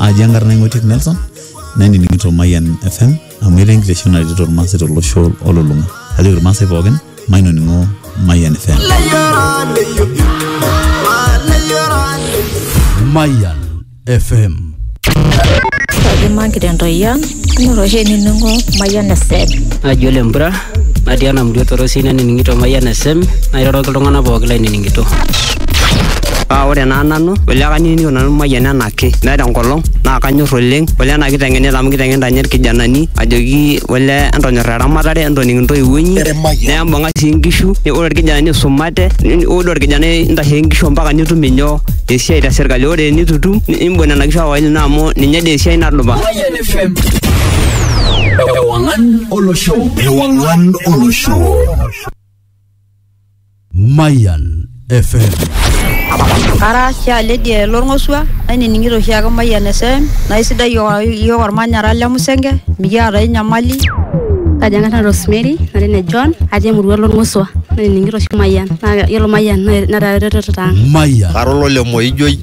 aji enkarna ing'oitiek nelson nainining'ito mayian fm amu etaa enkitesheni naretito irmaasai tolosho olulung'a ajoki irmaasai pookin mainoning'o mayian fm Mayan FM. Kaji mankitendo yan, inoto oshi enining'o mayian esed. Ajo lempura natii ena murua torosi nanining'ito Mayian FM nairoroki iltung'anak pooki lainining'ito. Paa ore naa nanu ole kanining'ito nanu Mayian enaake meeta enkolong naa kanyor oleng ole ena kiteng'enita amu kiteng'enita ninye irkijanani ajoki ole entonyorra eramatare entoning intoiwuo inyi nembung'a sii inkishu ore irkijanani isumate ore doi orkijanai intasheki inkishu ompaka nitum inyoo esiai te sirkali ore enitu itum nimbung nena kishu ake olino amu ninye dii esiai nadupa. olosho ewang'an olosho Mayan FM. Ara Shaa Lydia Lorng'osua, nainining'ito oshiake Mayian FM, naa isidai iyiook iyiook olmanyara le Musenge, mikiata ai nyamali. Kaji ang'as nanu Rosemary, nara ene John, atii emurua Lorng'osua, nainining'ito oshi Mayian, naa yiolo Mayian netaa eretoto ang'. Mayan. Ara olole Moijoi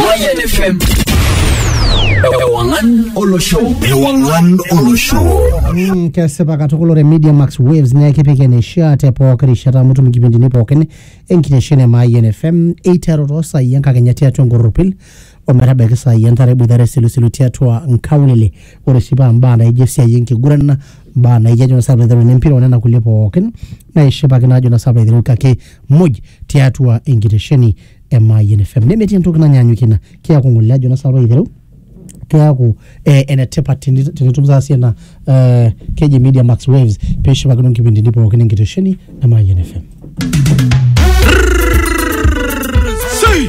Mayan FM. Ewangan Olo Show. Ewangan Olo Show. Mm, kesipa katukul ore media max waves naa kipik eneishaa te pooki rishata amu itum nkipindini pookin enkitesheni e Mayian fm eiteru too saai enkakenya tiatua enkorropil ometabaiki saai entare eboitare isilusilu tiatua nkaulele ore sii paa mbaa naijo esiai enkiguran na mbaa naijo ajo nasa aiteru nempira onena kulie pookin naishipakino ajo nasa aiteru kake muj tiatua enkitesheni e Mayian FM nemetii entoki nanyaanyukie ina keeku ng'ole ajo nasa aiteru keeku eh, enetipat teni- tenitum saasie ena eh, keji media max waves pishipakino nkipindini pookin enkitesheni e Mayian FM Sei!